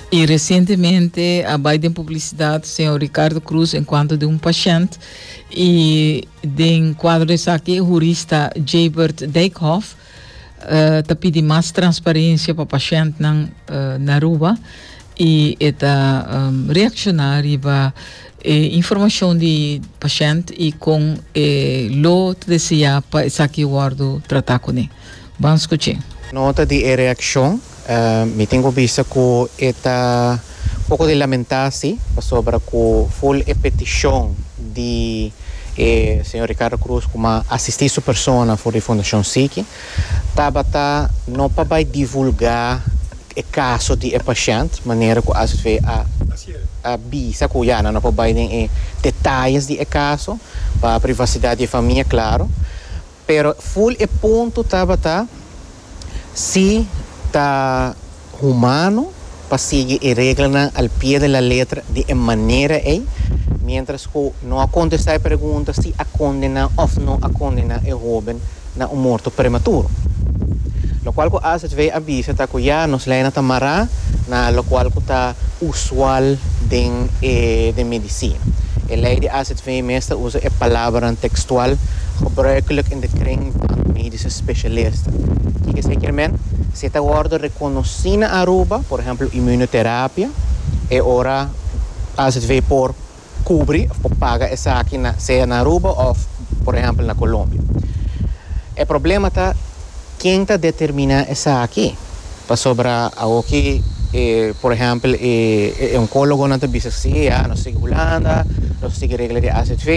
Y recientemente a bay den publicidad señor Ricardo Cruz en cuanto de un pashent y den cuadro de esaki jurista Jabert Dijkhof eh, ta pidi mas transparencia pa pashentnan eh, na Aruba y e ta em, reacciona riba e informacion di pashent y con e lo ta desea pa esaki wordo trata cune. Bon scuche. Nota di e reaccion, Mi tin cu bisa cu e ta poco di lamenta si, pasobra cu full e peticion di e señor Ricardo Cruz cu ma asisti su persona for di Fundacion Siki, tabata no pa bay divulga e caso di e pashent, manera cu asv a a bisa cu ya nan no por bay den e detalles di e caso pa privacidad di e famia, claro. Pero full e punto tabata si ta humano pa sigui e reglanan al pie de la letra di e manera ey, mientras cu no a contesta e pregunta si a condena of no a condena e hoben na un morto prematuro. Locual cu AZV a bisa ta cu ya nos leynan ta mara na locual cu ta usual den e den medicina. E ley di AZV. Mi mes ta usa e palabranan tekstual gebruikelijk in de kring van de medische specialisten. Kiko esei kier men? Si e ta wòrdu rekonosí na Aruba, por ehempel immunoterapia, e ora AZV por kubri òf por paga esaki na sea na Aruba òf, por ehempel, na Colombia. E problema ta. Ken ta determiná esaki? Pasobra awoki e, por ehèmpel, e onkólogonan ta bisa si, ya, nos sigui Hulanda, nos a sigui regla di AZV,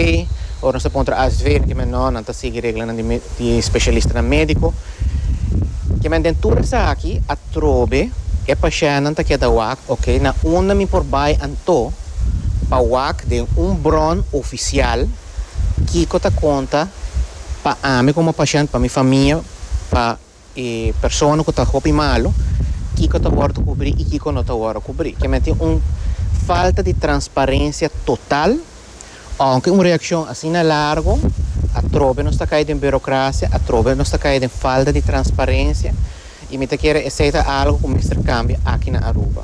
o nos ta pon tra AZV i nan kimen nò, nan ta sigui reglanan di med, di spesialistanan médiko. Kimen den tur esaki, atrobe e pashèntnan ta keda wak, Oke, na unda mi por bai anto pa wak den un bron ofisial? Kiko ta konta pa ami komo pashènt, pa mi famia, pa e persona ku ta hopi malu, kiko ta wòrdu kubrí i kiko no ta wòrdu kubrí? Kier mi a tin un falta di transparensia total, ounke un reakshon asina largu, atrobe nos ta kai den burokrasia, atrobe nos ta kai den falta di transparensia, i mi ta kere esei ta algu ku mester kambia aki na Aruba.